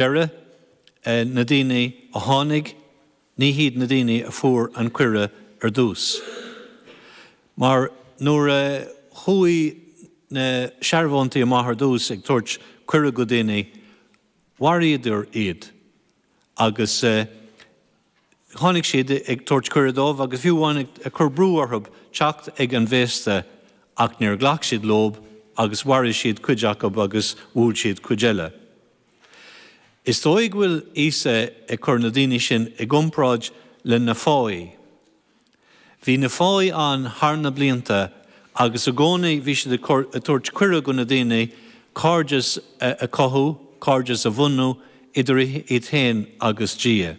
deireadh, na daoine a tháinig, ní hiad na daoine a fuair an cuireadh ar dtús. Mar nuair a chuaigh na searbhóntaí amach ar dtús ag tabhairt cuireadh go daoine, mharaíodar iad agus. tháinig siad ag tabhairt cuireadh dóibh agus fiú amháin ag cur brú orthu teacht ag an bhféasta ach níor ghlac siad leo agus mharaigh siad cuid acu agus bhuail siad cuid eile. Is dóigh go bhfuil Íosa ag cur na daoine sin i gcomparáid le na fáidhí. Bhí na fáidhí ann thar na blianta agus i gcónaí bhí siad ag tabhairt cuireadh do na daoine cairdeas a chothú, cairdeas a bhunú idir iad féin agus Dia.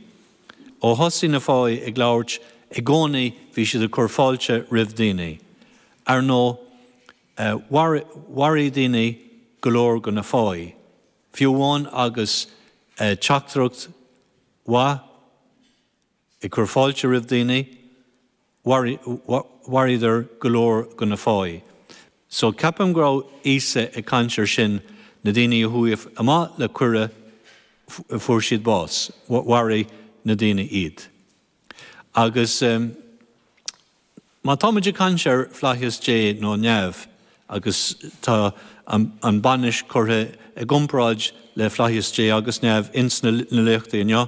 Ó thosaigh na fáidhí ag labhairt, i gcónaí bhí siad ag cur fáilte roimh daoine. Ar ndóigh, mharaigh daoine go leor de na fáidhí, fiú amháin agus teachtaireacht mhaith. Ag cur fáilte roimh daoine, mharaíodar go leor de na fáidhí. So, ceapaim go raibh Íosa ag caint ar sin, na daoine a chuaigh amach le cuireadh, fuair siad bás, mharaigh na daoine iad. Agus. Má tá muid ag caint ar Flaitheas Dé nó Neamh, agus tá an bainis curtha i gcomparáid le Flaitheas Dé agus Neamh ins na léachtaí inniu,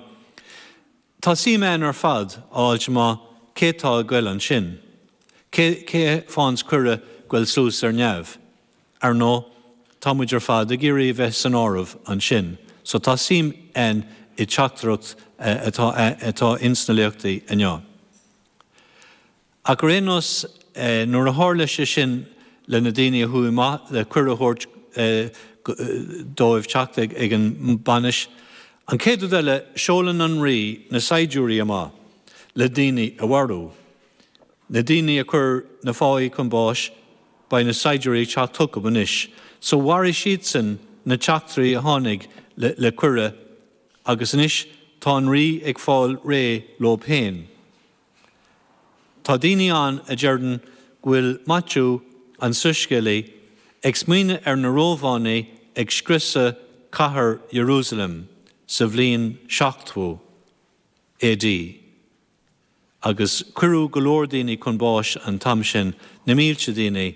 tá suim againn ar fad a fháilt amach cé tá ag goil ansin, cé fhaigheanns cuireadh goil suas ar Neamh. Ar ndóigh, tá muid ar fad ag iarraidh a bheith san áireamh ansin, so tá suim againn i dteachtaireacht atá ins na léachtaí inniu. Ach ar aon nós, nuair a tharla sé sin le na daoine a chuaigh amach le cuireadh a thabhairt dóibh teacht ag an mbainis, an chéad rud eile, seolann an Rí na saighdiúirí amach le daoine a mharú. Na daoine a chuir na fáidhí chun báis, beidh na saighdiúirí ag teacht chucu anois, so mharaigh siadsan na teachtairí a tháinig le cuireadh, Agus anois tá an Rí ag fáil réidh leob fhéin. Tá daoine ann a deireann go bhfuil Maitiú, an soiscéalaí, ag smaoineadh ar na Rómhánaigh ag scriosadh cathair Ierúsaleim sa bhliain 70 A.D. agus cuireadh go leor daoine chun báis an t-am sin, na mílte daoine,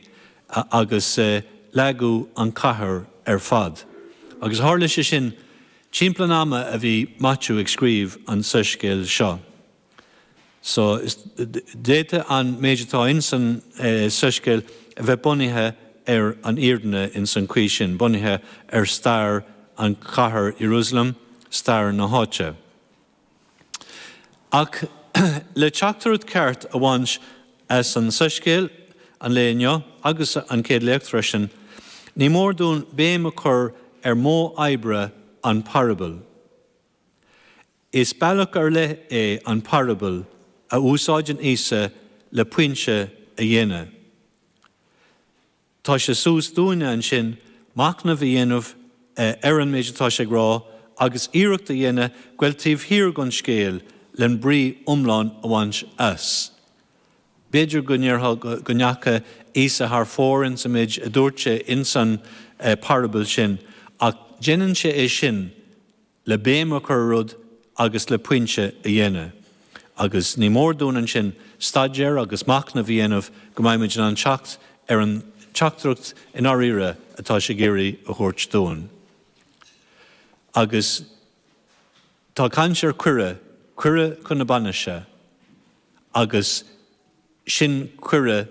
agus leagadh an chathair ar fad. Agus tharla sé sin timpeall an ama a bhí Maitiú ag scríobh an tsoiscéil seo. So, d'fhéadfadh an méid atá ins an soiscéal a bheith bunaithe ar an fhírinne ins an chaoi sin, bunaithe ar stair an chathair Ierúsalem, stair na háite. Ach le teachtaireacht ceart a bhaint as an tsoiscéal an lae inniu, agus an chéad léacht freisin, ní mór dúinn béim a chur ar mhodh oibre an pharabail. Is bealach ar leith é an parabal a úsáideann Íosa le pointe a dhéanamh. Tá sé suas dúinne ansin machnamh a dhéanamh ar an méid atá sé ag rá agus iarracht a dhéanamh goil taobh thiar den scéal le brí iomlán a bhaint as. B'fhéidir go ndéarfá go ndeacha Íosa thar fóir ins an méid a dúirt sé ins an parabal sin ach déanann sé é sin le béim a chur ar rud agus le pointe a dhéanamh, agus ní mór dúinn ansin staidéar agus machnamh a dhéanamh go mbeimid in ann teacht ar an teachtaireacht i ndáiríre atá sé ag iarraidh a thabhairt dúinn. Agus tá caint ar chuireadh, cuireadh chun na bainise, agus sin cuireadh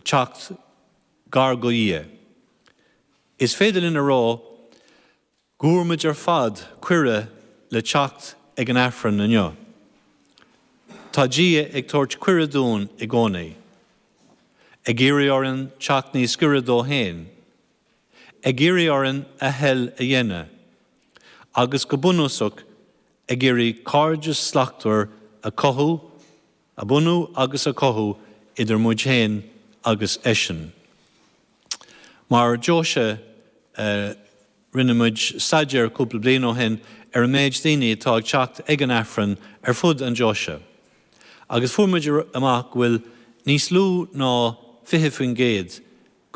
teacht gar do Dhia. Is féidir linn a rá. Go bhfuair muid ar fad cuireadh le teacht ag an Aifreann inniu. Tá Dia ag tabhairt cuireadh dúinn i gcónaí, ag iarraidh orainn teacht níos giorra dó féin, ag iarraidh orainn a thoil a dhéanamh, agus go bunúsach ag iarraidh cairdeas slachtmhar a chothú a bhunú agus a chothú idir muid féin agus eisean. Mar deoise, rinne muid staidéar cúpla bliain ó shin ar an méid daoine atá ag teacht ag an Aifreann ar fud an deoise agus fuair muid amach go bhfuil níos lú ná 20%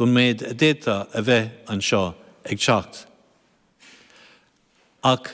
den mhéid a d'fhéadfadh a bheith anseo ag teacht ach